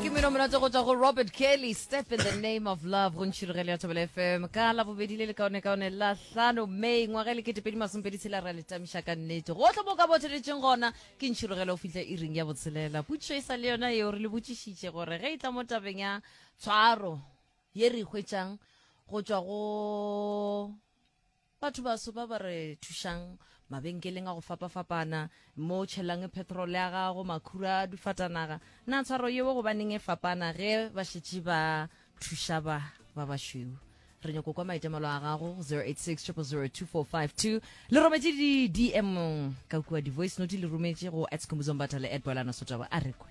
ke meno monate go tswa go robert kelly step in the name of love go ntšhirogele ya thobela fm ka la bobedi le lekaone kaone la hlano may ngwaga e le ketepedi masompedi tshela ra letamiša ka nnete gotlhe mo ka botheletšeng gona ke ntšhirogele o fitlha e ring ya botshelela putšo e sa le yona eo re le botšišitše gore ge e tla mo tabeng ya tshwaro ye re e hwetšang go tswa go Batho baso ba ba re thušang mabenkeleng a go fapafapana, mo o tšhelang petrole ya gago, makhura a dufatanaga. Na tshwaro yeo gobaneng e fapana ge ba šetše ba thuša ba ba bašweu? Re nyoko kwa maitemelo a gago go 0860002452. Le rometše di-DM ka kua di-voice note le rometše go at Skhumbuzo Mbatha le at Boelana Sotabo. A re kwe.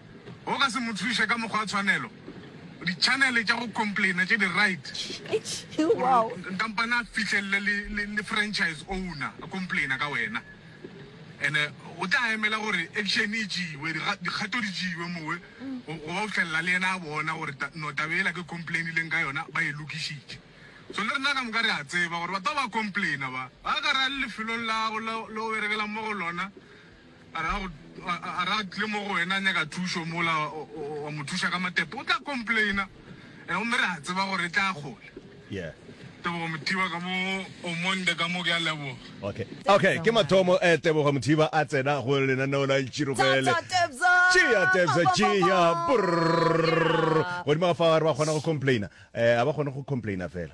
O ka se mo thuše ka mokgwa wa tshwanelo. Ditšhanele tša go complainer tše di right gore kampane a fihlelele le, le, le franchise owner a complainer ka wena. Ene o tla emela gore action e tšewe, diga- dikgato di tšewe mowe go go ba go fihlelela le yena a bona gore ta- no tabe ela ke complainileng ka yona ba e lokišitše. So le rena ka moka re a tseba gore batho ba ba complainer ba ba ka ra lefelong lago la- le o berekelang mo go lona A re a re a tle mo go wena a nyaka thušo mola wa mo thuša ka matepe o tla complaina and gomme re a tseba gore e tla kgole. Yeah. Tebogo Mothiba ka mo Omonde ka mo ke a leboga. Okay. Okay, ke mathomo eh Tebogo Mothiba a tsena go lenaneo la Tširogele. Tšea Tebza tšea. Godimo ga fa re ba kgona go complaina. Eh a ba kgone go complaina fela.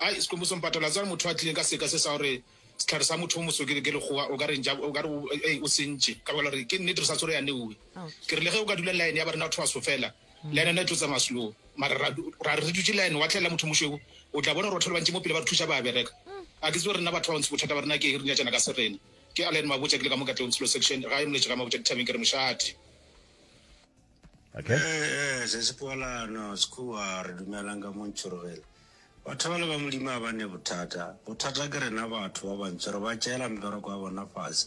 Ai, Skhumbuzo Mpatala, a tseba motho a tlileng ka seka se sa gore sehlare sa motho o moso ke ke lekgowa, o ka re ntša, o ka re o, ei, o sentše, ka baka la gore ke nnete re sa tsore ya neuwe. Ke re le ge o ka dula line ya ba rena batho baso fela, line yona e tlo tsamaya slow, mara ra, ra re re dutše line, wa tlhaela motho o mošweu, o tla bona gore batho ba le bantši mo pele ba re thuša, ba a bereka. A ke tsebe rena batho ba bantsho bothata ba rena ke eng, re nyatšana ka serena. Ke Allan Mabotja, ke le ka mo Katlehong, Tshilo Section, gae Moletše ga Mabotja dithabeng, ke re mošate. Okay. Eh, se se kwala no sekhuwa re dumelang ka mo ntšhorogele batho ba le ba modimo ga ba ne bothata bothata ke rena batho ba bantso re ba tšeela mbereko ya bona fase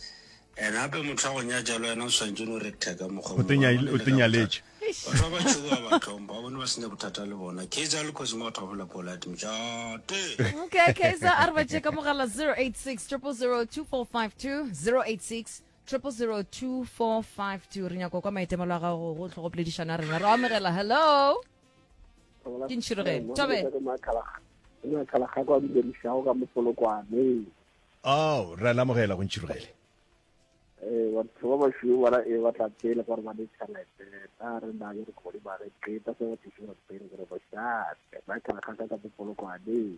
and gape motho wa go nya jalo yena o swantse no re teka mokgwa O te nya- o te nyaletše. batho ba batšho ba ba tlhompha ba bone ba sene bothata le bona khetsa le kgosi mo batho ba bola polate mojate okay kaiser a re ba tšee ka mogala 086 0002452 086 triple zero two four five two re nyako kwa maitemelo a gago go tlogo poledišana a rena re amogela hello ke ntšhirogeng tobe ao re a lamogela go ntšhirogele eh, batho ba bašweu bana e ba tla pele gore ba ditšhelete a re na ke re kgodi ba re qeta se ba thušo ba pele gore ba šate ba kala kgaka ka bopolokwane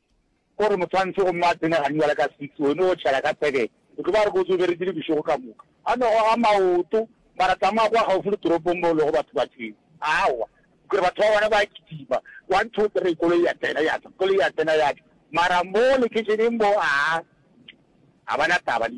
O re moswantšhi gomme a tsene ganywa le ka six, wene o tšhela ka seven. O tlo ba re kotsi o beretše le bošego ka moka. A no goga maoto. Ba ra tsamaya kwa gaufi le toropong mo go lego batho ba tshweu. Aowa. Kore batho ba bona ba kitima. One, two, three, koloi ya tsena, ya tšwa. Koloi ya tsena, ya tšwa. Mara mo lekheisheneng mo, aa, ga ba na taba le.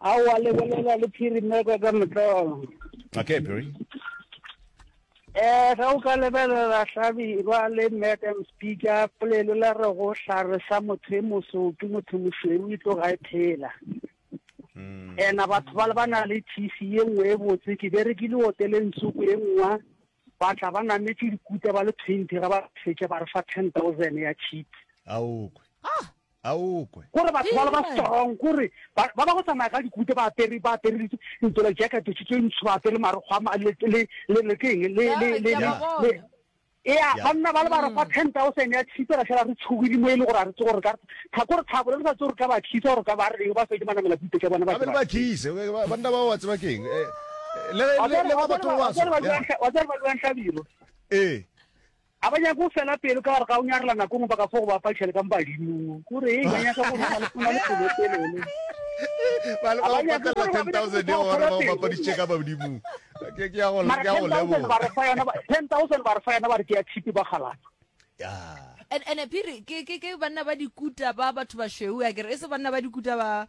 A wa lebelela le phirimeka ka motlolo. Okay, Barry. Eh, ga o ka lebelela hlabirwa le madam speaker polelo la re go hlare sa motho e moso ke motho mošweu e tlo ga e phela hmm. ena batho ba le ba na le tc ye nngwe e botse ke be re ke le hoteleng tsoko e nngwa ba tla ba nametse dikuta ba le twenty ga ba fetša ba re fa ten thousand ya cheap aokwe ah! a o kwe. Gore batho bale ba strong kore ba ba go tsamaya ka dikute ba apere ba apere di ntolo jacket tse tse ntsho ba apere maro gwa ma le le le le keng le le le le ya ba nna ba le ba re fa 10000 ya tshipe ra shela re tshogile mo ile gore a re tse gore ka tha gore thabo le sa tse gore ka ba khisa gore ka ba re ba se ke mana mela bute ke bona ba ba khise ba nna ba wa tseba keng le le ba batho ba wa tseba wa tseba ba lwa ntlabiro eh A ba nyake go fela pelo ka gare ga go nyarela nako ngwe baka fo go ba padiša le ka mo badimong. Ko re, ba nyaka go nna le pelo e telele. Ba le ba go patella 10,000 ya gore ba go bapaditše ka badimong. Ke ke ya go leboga. Mara 10,000 ba re fa yona, 10,000 ba re fa yona ba re ke ya thipi ba galata. Yeah. And and Phiri ke ke ke banna ba dikuta ba batho ba shweu a kere e se banna ba dikuta ba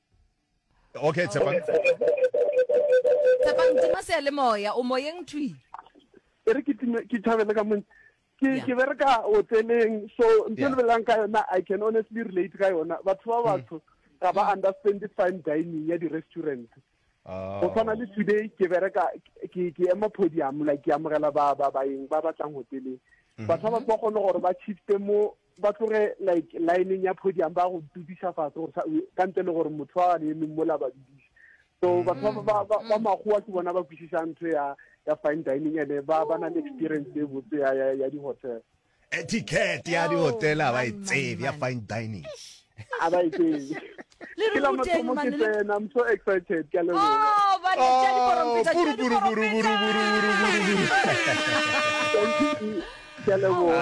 Okay, Tshepang. Tshepang, tima seyalemoya, o moyeng thwi. E re ke time, ke thabele ka mone. Ke ke bereka hoteleng, so ntho le belang ka yona, I can honestly relate ka yona. Batho ba batho ga ba understand the fine dining ya di-restaurant. Go tshwana le today ke bereka ke ke ema podium like ke amogela ba ba baeng ba batlang hoteleng. Batho ba ba kgone gore ba shifte mo Ba tloge like lineng ya podium ba go dudiša fase go sa ka ntle le gore motho wa gane emeng mola ba dudiša. So batho ba ba ba ba makgowa ke bona ba kwešišang ntho ya ya fine dining ene ba ba na le experience e botse ya ya ya di hotel. Etiquette ya di hotel ha ba e tsebe ya fine dining. a ba ikeng le re ruteng mane le I'm so excited ke le oh ba le tsa di poromfeta tsa di poromfeta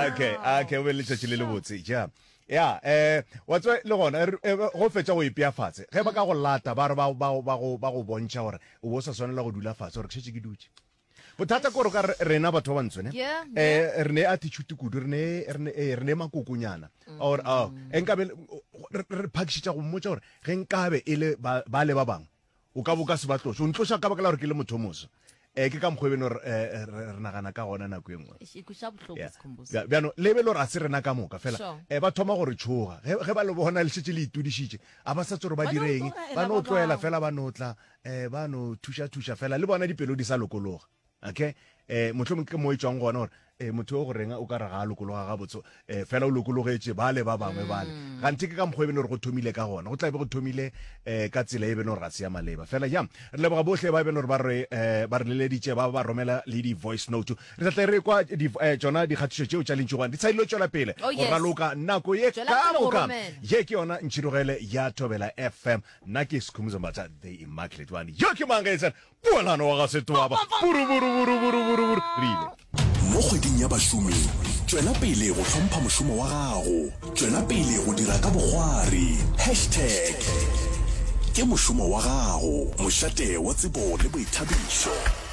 okay okay o be le tšatši le le botse ja ya eh wa tswa le gona eh, go fetsa go ipea fatshe ge ba ka go lata ba re ba go bontšha gore o bo sa swanela go dula fatshe gore ke šetse ke dutše Bothata kore ka rena batho ba bantsho ne eh, re ne attitude kudu re ne re ne eh, re ne makokonyana mm. or a oh, enkabe re phakishitsa go mmotsa gore ge nkabe e le ba le ba bangwe o ka boka se ba tloša o ntloša ka baka la gore ke le motho moso eh ke ka mokgwa beno eh, eh, re nagana ka gona nako e nngwe bjano le be le gore a se rena ka moka fela um ba thoma gore tshoga ge ba le bona le šetse le itudišitše a ba sa tsore ba direng ba no tloela fela ba no tla eh, ba no thuša-thuša fela le bona dipelo di sa lokologa okay eh mohlomong ke mo e tswang gona gore eh motho o go renga o ka re ga a lokologa ga botso eh fela o lokologetše ba le ba bangwe bale mm. ganthe ke ka mokgwa e bene gore go thomile ka gona go tla be go thomile eh ka tsela e bene gore ga se ya maleba fela jang re leboga bohle ba e bene gore ba re eh ba re leleditše ba ba romela le di voice note re tla tle re kwa di eh, tsona dikgatišo tšeo tša lentšogwane di tshadilo tswela pele oh, go raloka nako ye ka moka ye ke yona ntšhirogele ya thobela fm Nna ke Sikhumbuzo Mbatha the Immaculate Bani. Yo ke mang ge e sena Poelano wa ga Setoaba? Buruburuburuburuburuburu. Re ile. Mo kgweding ya bašomi, tšwela pele go hlompha mošomo wa gago. Tšwela pele go dira ka bokgwari. Hashtag Ke mošomo wa gago, mošate wa tsebo le boithabišo.